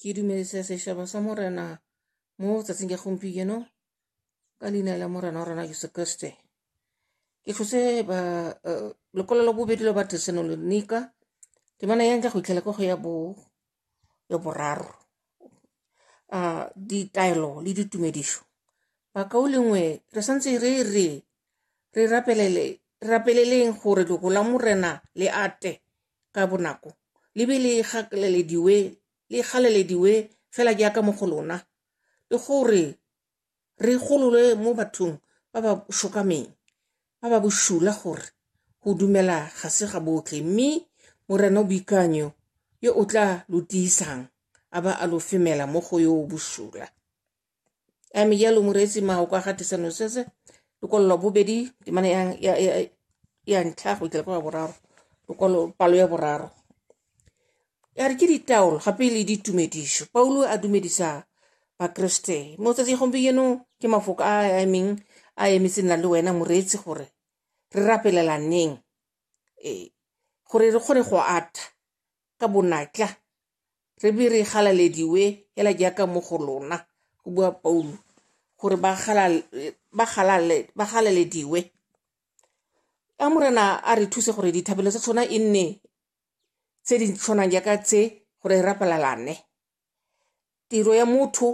ke dumedisa setšhaba sa morena mo tsatsing ya gompieno ka leina la morena wa rona jesu kriste ke tlhose ba eh, lekwalo la bobedi la bathesalonika temana ya nka go itlhela ka go ya bo ya boraro a ah, ditaelo le ditumedišo bakao lengwe re santse re re re rapelele rapeleleng gore lego la morena le ate ka bonako le be le gakalelediwe le galalediwe fela jaaka mo go lona le gore re golole mo bathong ba ba shokameng ba ba boshula gore go dumela ga se ga botlhe mme morena o boikanyo yo o tla lo tiisang a ba a lo femela mo go yo o boshula a me jalo moreetsi mao kwa ga tisa nosese lokwalo lwa bobedi temana ya, ya, ya, ya ntlha go ikela kwa ya boraro lokwalo palo ya boraro ya re ke ditaolo gape le ditumedišo paulo a dumedisa bakriste mo tsatsi gompieno ke mafoko a a emeng a emetseng na le wena moreetsi gore re rapelelaneng ee gore re kgone go atha ka bonatla re be re galalediwe hela jaaka mo go lona go bua paulo gore ba galalediwe a morena a re thuse gore dithabelo tsa tshwana e nne tse di tshwanang jaaka tse gore rapalalane tiro ya motho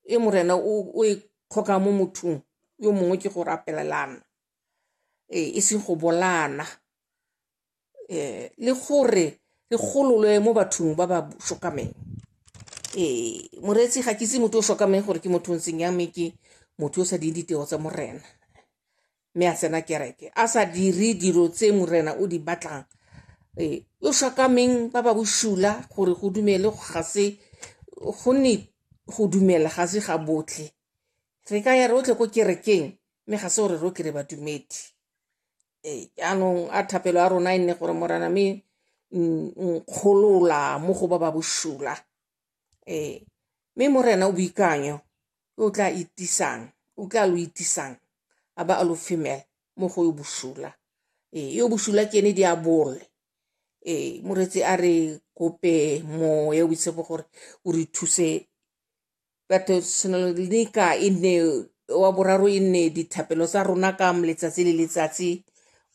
e morena o e kgokang mo mothong yo mongwe ke go rapelelana ee e seng go bolana um le gore re gololwe mo bathong ba ba shokameng um moreetsi ga ke itse motho o shokameng gore ke motho o ntseng yang me ke motho o sa ding ditiro tsa morena mme a tsena kereke a sa dire dilo tse morena o di batlang um o shokameng ba ba boshula gore go dumele ga se gonne go dumela ga se ga botlhe re ka ya rotlhe ko kerekeng mme ga se gore rotlhe re badumedi Ee, jaanong a thapelo ya rona e nne gore morana me nkgolola mo go ba ba bosula ee mme morena o boikanyo o tla itisang o tla lo itisang a ba a lo femela mo go yo bosula ee yo bosula ke ene di a bole ee moretsi a re kope moya o boitshepo gore o re thuse batho tshwanelo le ka e nne wa boraro e nne dithapelo tsa rona ka letsatsi le letsatsi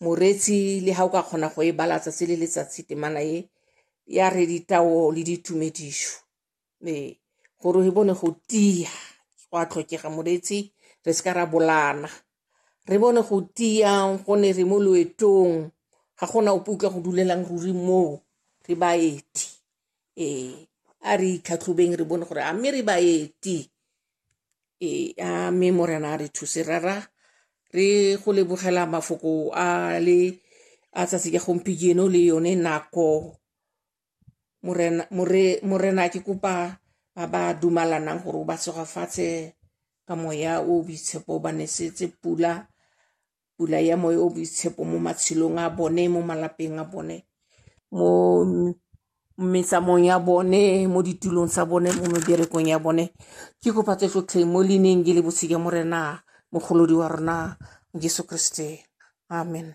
moretsi le ga o ka kgona go e bala tsatsi le letsatsi temana e ya re ditao le ditumedišo ee gore re bone go tia go a tlhokega moretsi re se ka ra bolana re bone go tia gone re mo loetong ga gona ope utlwa go dulelang ruri moo re baeti ee a re itlhatlhobeng re bone gore a mme re baeti ee a mme morena a re thuse rara re go lebogela mafoko a le a tsatsi ka gompieno le yone nako morena more morena ke kopa ba ba dumalanang gore o ba segofatshe ka moya o boitshepo ba nesetse pula pula ya moya o boitshepo mo matshelong a bone mo malapeng a bone mo metsamong ya bone mo ditulong tsa bone mo meberekong ya bone ke kopa tse tsotlhe mo leineng ke le bosika mo rena mogolodi wa rona jesu kriste amen